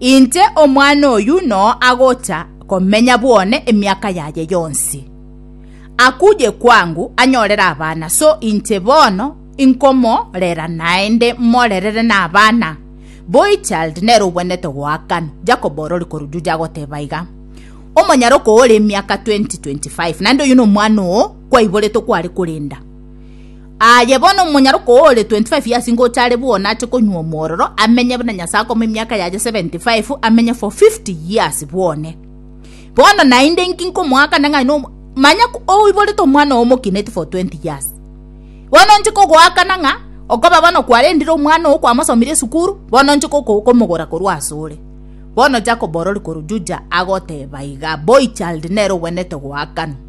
Inche omwana oyio noo agocha komenya bwone emiaka yaye yonsi. Akuye kwangu anyorere abana, so inche bono inkomorera naende morerere nabana. Boy child nere obwenerete goakanwa. Jacob ore ore korwa Juja agoteba iga, Omonyara okoora emiaka 20, 25, naende oyio nomwana oo kwaiboretwe kware korenda. Aye bono omonyaroka ore 25 years ngocha are bwona ache konywa omororo, amenye buna Nyasae akoma emiaka yaye 75, amenye for 50 years bwone. Bono naende inki nkomoakana ng'a aino omo- manya ko- oiborete omwana oo omokineti for 20 years. Bono nche kogoakana ng'a okoba bono kwarendire omwana oo kwamosomire esukuru, bono nche koko- komogora korwa asore. Bono Jakobo orori korwa Juja agoteba iga, Boy child, nere ogwenerete goakanwa.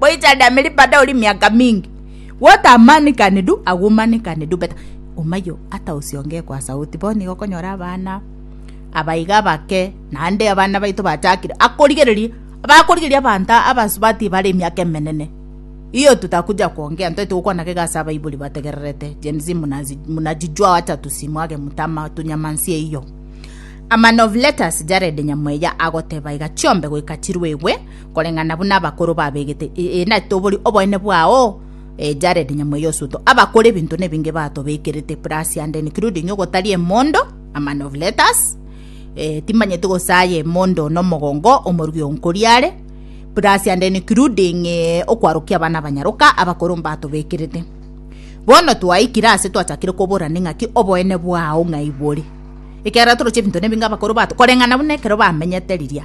boichande ameri bada ori miaka mingi gotamanekane du agomanekane du but omayo ata osionge kwa sauti bono igo okonyora abana abaiga abake naende abana baito bachakire akorigereria bakorigereria abanto abasubati bare emiaka emenene iyo tutakuja kuongea ntoe togokwana iga ase abaibori bategererete gen z munajijua wacha tusimwage mutama tunyamansie iyo a man of letters Jared nyamoeya agoteba iga chiombe goika chiruegwe. koreng'ana buna abakoro babegete, ee, na tobori oboene bwao, ee, Jared Nyamweya Osuto, abakora ebinto nebinge batobekerete plus and including ogotaria emondo, a man of letters, ee, timanyeti gosaya emondo na omogongo, omorugi o Nkoriare, plus and including ee, okwarokia abana abanyaroka, abakoro mbatobekerete. Bono twaikire ase twachakire koborana ng'aki oboene bwao ng'ai bore. Ekiagera toroche ebinto nebinge abakoro bato koreng'ana buna ekero bamenyete riria.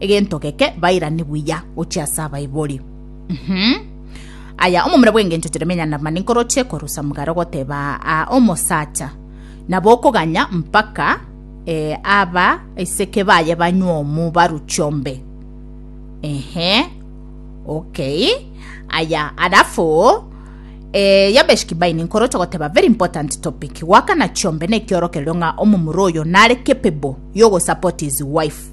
Egento geke bairani buya gochia ase abaibori. Uhum. Aya, omomura bw'engencho Jeremia Naamani nkoroche korwa Samugali ogoteba aa omosacha, nabo okoganya mpaka eh, aba iseke baye banywe omu baru chiombe. Ehe. Okay. Aya, alafu eh, Yabesh Kibaini nkoroche ogoteba very important topic. Goakana chiombe nekiorokererio ng'a omomura oyo nare capable yogosupport his wife.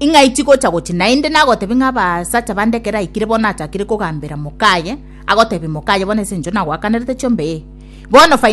Ing'ai tigocha gochia naende? Nagotebie ng'a abasacha bande ekero aikire bono achakire kogambera mokaye, agotebia mokaye, Bono ase engencho nagoakanerete chiombe, ee, bono faini